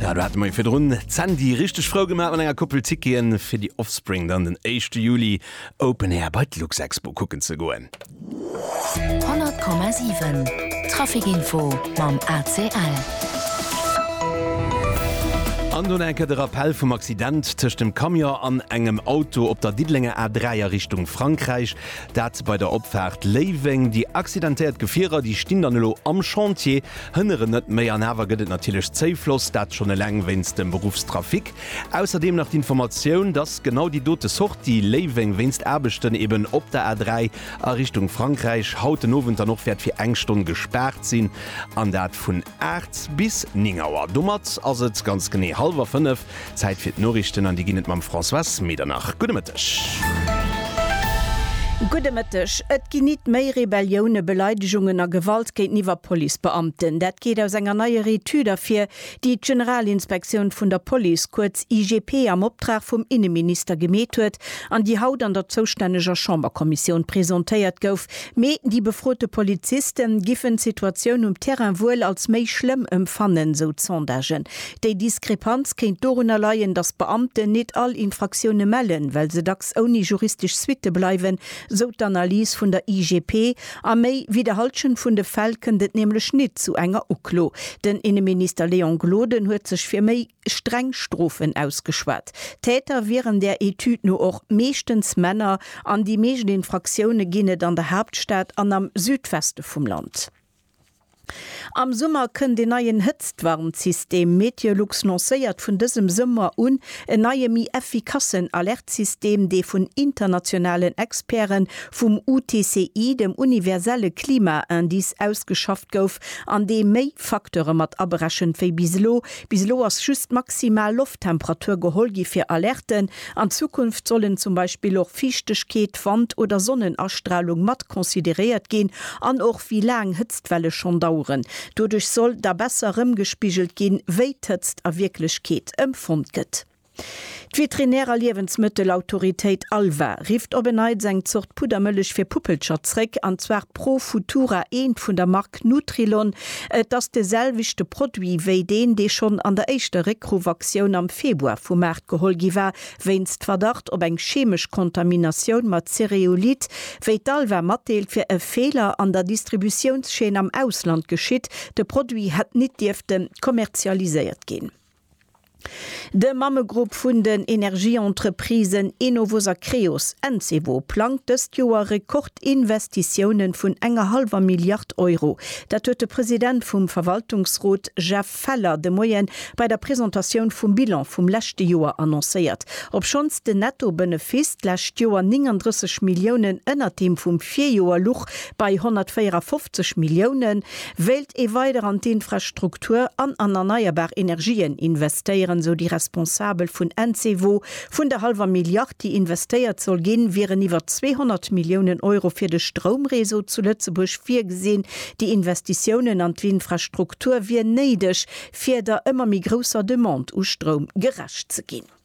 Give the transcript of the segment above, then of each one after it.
Ja, du hat mei virdrun Sandy richteg frou gemaat mat enger Koppel Ticketen fir déi Offspring dann den éischte Juli Open Air bei d'Luxexpo kucken ze goen. 100,7 Traficinfo mam ACL. An dunn eng Kéier de Rappell vum Accident tëscht dem Camion an engem Auto op der Diddelenger A3 a Richtung Frankräich. Dat bei der Opfaart Léiweng. Déi accidentéiert Gefierer, déi stinn dann elo am Chantier. Hënneren net méi an awer gëtt et natierlech Zéifloss, dat schonn eleng wéinst dem Beruffstrafic. Ausserdeem nach d'Informatioun, dass genau déi dote Sortie Léiweng wéinst Aarbechten eben op der A3 a Richtung Frankräich haut den Owend dann och wäert fir eng Stonn gespaart sinn, an dat vun 8 bis 9 Auer. Domat ass et ganz genee hallwer 5. Zäit fir d'Noriichten an déi ginn et mam Françoise Medernach. Gudde Mëtteg. Gudde Mëtteg. Et ginn nit méi Rebellioune, Beleidegungen a Gewalt géinteniwwer Policebeamten. Dat geet aus enger neier Etüd ervir, déi d'Generalinspektioun vun der Police, kuerz IGP, am Optrag vum Inneminister gemeet huet an déi haut an der zoustänneger Chamberkommissioun presentéiert gouf. Mee déi befrote Poliziste giffen d'Situatioun um Terrain wuel als méi schlëmm ëmfannen, sou d'Sondagen. Déi Diskrepanz kéint dorunner leien, datt d'Beamten nit all Infraktioune mellen, well se dacks ouni juristesch Suitte bleiwen, sou d'Analys vun der IGP. A méi wéi der Halschent vun de Fäll kënnt et nämlech nit zu enger Uklo. Den Inneminister Léon Gloden huet sech fir méi streng Strofen ausgeschwat. D'Täter wieren der Etüd no och meeschtens Männer an déi meescht Infraktioune ginn et an der Haaptstad an am Südweste vum Land. Am Summer kënnt een neien Hëtztwarnsystem. Meteolux lancéiert vun dësem Summer un en neie méi effikassen Alertsystem, dee vun internationalen Experte vum UTCI, dem universelle Klima-Indice, ausgeschafft gouf an dee méi Facteure mat aberechent wéi bis elo. Bis elo ass just d'maximal Lofttemperatur geholl gi fir Alerten, An Zukunft sollen zum Beispill och Fiichtegkeet, Wand oder Sonnenastralung mat consideréiert ginn an och wéi laang Hëtztwelle schonn daueren. Doduerch soll da besser erëmgespigelt ginn, wéi d'Hëtzt a Wierklechkeet empfonnt gëtt. D'Veterinär a Liewensmëttelautoritéit ALVA rifft op en Neits eng Zort Puddermëllech fir Puppelcher zréck, an zwar Pro Futura, eent vun der Mark Mark Nutrilon, et ass de selwechte Produit wéi deen, dee schonn an der éischter Réckruff-Aktioun am Februar vu Maart geholl gi war, wéinst Verdacht op eng chemesch Kontaminatioun mat Cereolit, wéi d'ALVA matdeelt, wier e Feeler an der Distributiounschaîne am Ausland geschitt, de Produit hätt nit dierfte kommerzialiséiert ginn. De Mammegrupp vun den Energieentreprisen Enovos a Creos, Encevo, plangt dëst Joer Rekordinvestitiounen vun enger hallwer Milliard Euro. Dat huet de President vum Verwaltungsrot Jeff Feller de Moie bei der Presentatioun vum Bilan vum leschte Joer annoncéiert. Obschonns den Netto-Benefiss d'lescht Joer 39 Milliounen ënnert deem vum Virjoer luch, bei 154 Milliounen, Wéilt ee weider an d'Infrastruktur an an erneierbar Energien investéieren, esou déi Responsabel vun Encevo. Vun der hallwer Milliard, déi investéiert soll ginn, wieren iwwer 200 Milliounen Euro fir de Stroumreseau zu Lëtzebuerg virgesinn. Déi Investitiounen an d'Infrastruktur wier néideg, fir der ëmmer méi grousser Demande u Stroum gerecht ze ginn.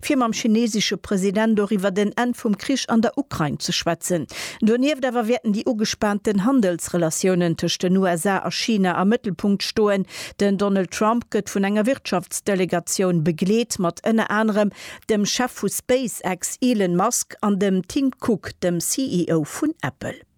fir mam chinesesche President doriwwer den Enn vum Krich an der Ukrain ze schwätzen. Donieft awer wäerten déi ugespaanten Handelsrelatiounen tëscht den USA a China am Mëttelpunkt stoen. Den Donald Trump gëtt vun enger Wirtschaftsdelegatioun begleet, mat ënner anerem dem Chef vu SpaceX Elon Musk an dem Tim Cook, dem CEO vun Apple.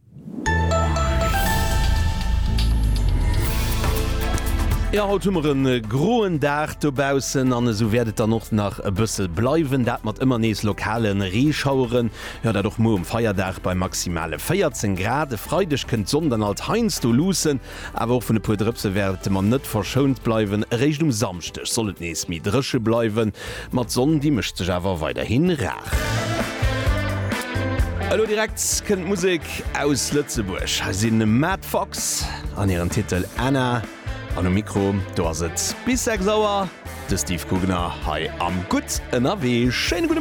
Jo, haut hu mer e groen Dag dobaussen an esou wäert et dann och nach e bësse bleiwen, dat mat ëmmer nees lokale Reeschaueren. Jo, dat och muer um Feierdag bei maximale 14 Grad. E Freideg kënnt d'Sonn dann alt heiansdo luussen. Awer och vun e puer Drëpse wäerte mer net verschount bleiwen. Eréischt um Samschdeg soll et nees méi dréche bleiwen, ma d'Sonn, déi mécht sech awer weiderhi rar. Elo direkt kënnt Musek aus Lëtzebuerg. Hei si Matt Fox an hiren Titel Anna. An um Mikro, do ass et bis 6 Auer de Steve Gugner hei am Gutt ënnerwee. Schéine gudde.